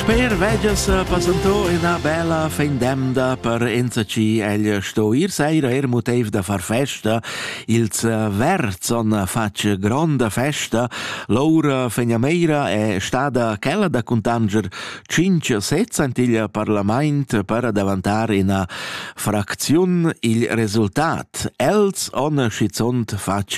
Sper vegias passantò ina bella fin d'emda per enzatgi egl sto ir seira er motiv da far festa. Ils verzon fatg gronda festa. Laura Fegnameira è stada quella da cuntanger cinc sets antiglia parlament per davantar ina fracziun il resultat. Els on schizunt fatg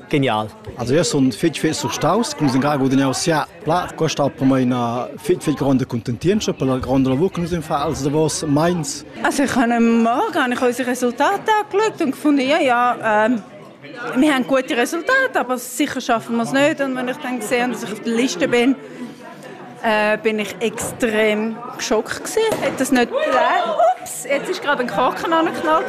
Genial. Also io sun fich fich surstaus, cum s'in garagu da negoziar. Pla custa promai üna fich fich gronda cuntentientscha per la gronda lavur che nus ün fa als davos meins. Also ich habe morgen habe ich unsere Resultate angeschaut und gefunden, ja, ja, ähm, wir haben gute Resultate, aber sicher schaffen wir es nicht. Und wenn ich dann sehe, dass ich auf der Liste bin, äh, bin ich extrem geschockt gewesen. Hat das nicht Ups, jetzt ist gerade ein Korken angeknallt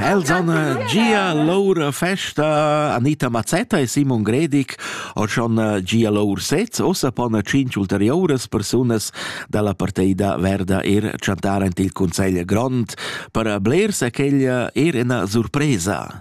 Elsanne, Gia, Laura Festa, Anita Mazzetta e Simon Gredig han schon äh, gia lur sez, ossa pon cinc ulteriores persunas dalla parteida verda er chantar ant il Consegl Grond per blers aquella er ina surpresa.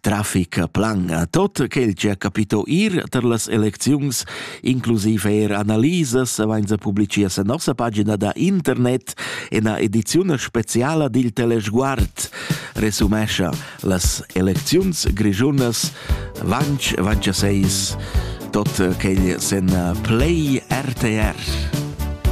Trafic plan a tot quel che ha capito ir tar las elecziuns, inclusiv er analisas, avainsa publicia sa nossa pagina da internet en a ediziuna speciala dil Telesguard, resumescha las elecziuns grischunas vanch vanch a seis tot quel sen play RTR.